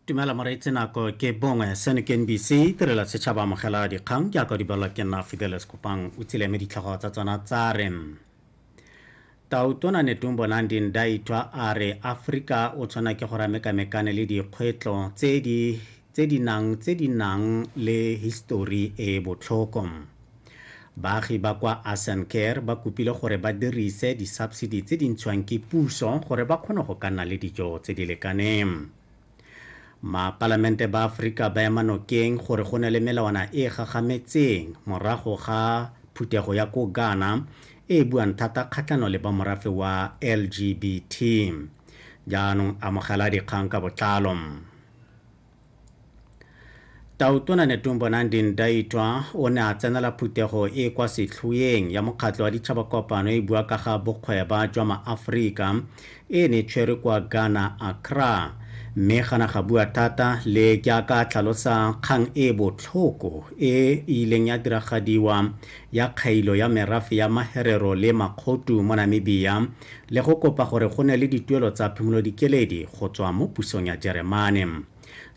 dumela moreetsi nako ke bongwe seno ke nbc tirela setšhaba amogela dikgang ke yaka dibalwa ke nna fideles kopang o tsile me ditlhogo tsa tsona tsa re tautona netumbo nandi ndaitwa a re aforika o tshwana ke go ramekamekane le dikgwetlo tse di tse di nang tse di nang le histori e e botlhoko. Baagi ba kwa Asan Care ba kopile gore ba dirise disubsidy tse di ntshiwang ke puso gore ba kgone go ka nna le dijo tse di lekaneng. Mapalamente ba Aforika ba ema nokeng gore go ne le melawana e e gagametseng morago ga phuthego ya ko Ghana e e buang thata kgatlhanong le ba morafe wa LGBT. Jaanong amogela dikgang ka botlalo. Tautona Netumbo Nandi-Ndaitwah o ne a tsenela phuthego e e kwa setlhoeng ya Mokgatlho wa Ditšhaba Kopano e e bua ka ga bokgweba jwa maAforika e ne e tshwerwe kwa Ghana, Accra. Mme ga na ga bua thata le jaaka a tlhalosa kgang e e botlhoko e e ileng ya diragadiwa ya kgailo ya merafe ya Maherero le Makgotu mo Namibia le go kopa gore go ne le dituelo tsa phimolodikeledi go tswa mo pusong ya Jeremane.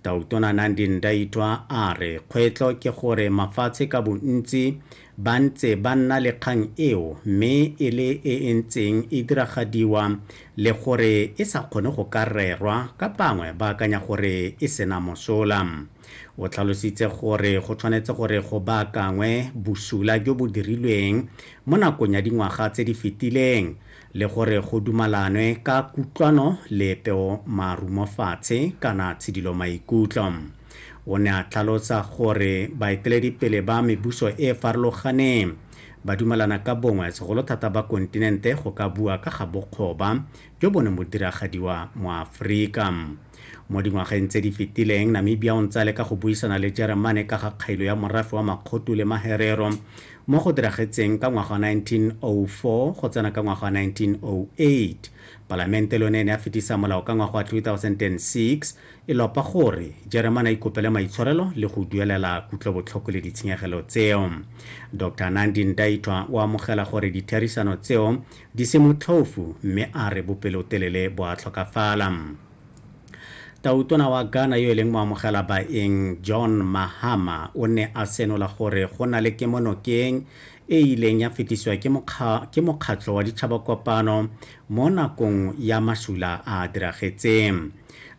Tautona Nandi Ndaitwa a re kgwetlho ke gore mafatshe ka bontsi ba ntse ba nna le kgang eo mme e le e e ntseng e diragadiwa le gore e sa kgone go ka rerwa ka bangwe ba akanya gore e sena mosola. O tlhalositse gore go tshwanetse gore go baakangwe bosula jo bo dirilweng mo nakong ya dingwaga tse di fetileng le gore go dumalanwe ka kutlwano le peo marumofatshe kana tshidilo maikutlo. O ne a tlhalosa gore baeteledipele ba mebuso e e farologaneng ba dumalana ka bongwe segolo thata ba kontinente go ka bua ka ga bokgoba jo bo ne mo diragadiwa mo Aforika. Mo dingwageng tse di fetileng, Namibia o ntse a leka go buisana le Jeremane ka ga kgailo ya morafe wa Makgotu le Maherero, mo go diragetseng ka ngwaga wa 1904 go tsena ka ngwaga wa 1908. Palamente le yone e ne ya fetisa molao ka ngwaga wa 2006 e lopa gore Jeremane a ikopele maitshwarelo le go duelela kutlobotlhoko le ditshenyegelo tseo. Doctor Nandi Ndaitwah o amogela gore ditherisano tseo Di se motlhofu mme a re bopelotelele bo a tlhokafala. Tautona wa Ghana yo e leng moamogela baeng John Mahama o ne a senola gore go na le kemonokeng e e ileng ya fetisiwa ke mokga, ke Mokgatlho wa Ditšhabakopano mo nakong ya masula a a diragetseng.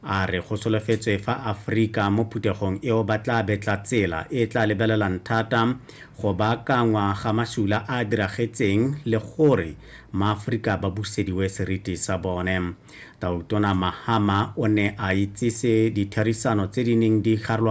A re go solofetswe fa Aforika mo phuthegong eo ba tla betla tsela e e tla lebelelang thata go baakangwa ga masula a a diragetseng le gore Maaforika ba busediwe seriti sa bone. Tautona Mahama o ne a itsise ditherisano tse di neng di garolwa